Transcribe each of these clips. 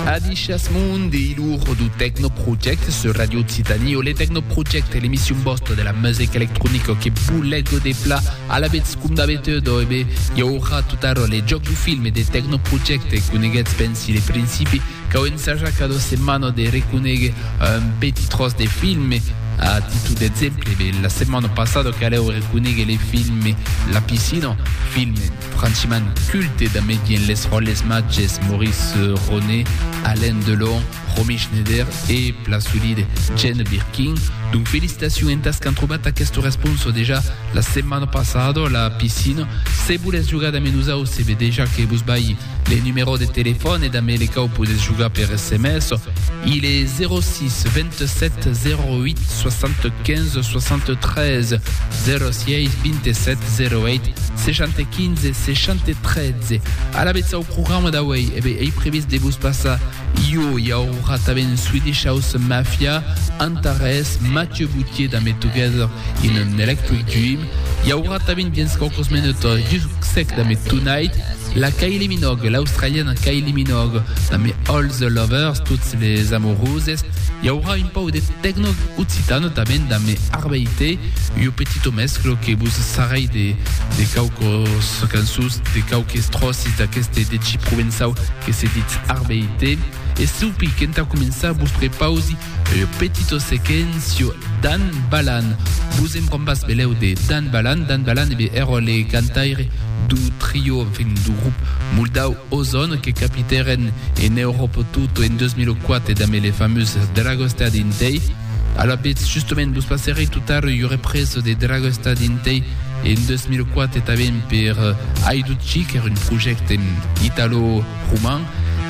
Adishas Mundi, il uro du Techno Project sur Radio Occitanie o le Techno Project, l'emission bosta de la musica electronica que boulego de pla a la bets cum d'habitude o ebe i aurà tot ara le joc du film de Techno Project e coneguets pensi le principi cau ensajar cada setmana de reconegue un petit tros de film a títol d'exemple, la setmana passada caleu reconegue le film La Piscina, film Franchiman culte da medien les ròles matges Maurice Ronet, Alain Delon, Romy Schneider e plan solide Jane Birkin. Donc felicitacion entas qu'an trobat aqueste responso dejà la setmana passada a la piscina. Se volètz jogar damb nosau se ve dejà que vos balhi le numerò de telefòn e damb ele cau podètz jogar per sms. Il e 06 27 08 75 63 06 27 08 615 613 alavetz au programa d'auei e be ei previst de vos passar io i aurà tanben Swedish House Mafia Antares Mathieu Boutier da Me Together in an Electric Dream i aurà tanben dins qualques minuts Jusc Sec da Me Tonight la Kylie Minogue l'australiana Kylie Minogue da Me All the Lovers tots les amoureuses I aurà un pauc de tecno occitan tanben damb me Arbeite, ua petito mesclo que vos sarrai de quauques cançons, de quauques tròces d'aqueste deci provençau que se ditz Arbeite. E saupi qu'entà començar vos prepausi ua petito sequencio Dan Balan. Vos en vam pas velèu de Dan Balan? Dan Balan, e ben, èra le cantaire dau trio, enfin, dau grop moldau, Ozon, que capitèren en Euròpa tot en 2004 damb le famós Dragostad Intei. Alavetz, justement, vos passèrei tot ara ua represa de Dragostad Intei en 2004 tanben per Aidutchi, qu'èra un projècte italo-roman.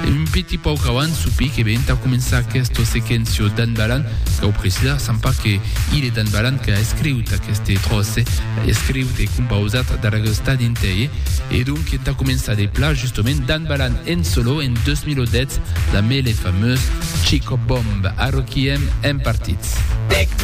Un petit pauc avant, sopi que be entà començar aquesta sequéncia d'An Balan, cau precisar, Sant pas que il e d'An Balan qu'a escriut aqueste tròç, escriut e compausat Dragostad Intei. E donc entà començar de pla justement Dan Balan en solo en 2010 damb le famós Chico Bomb. Arroquiem en partits.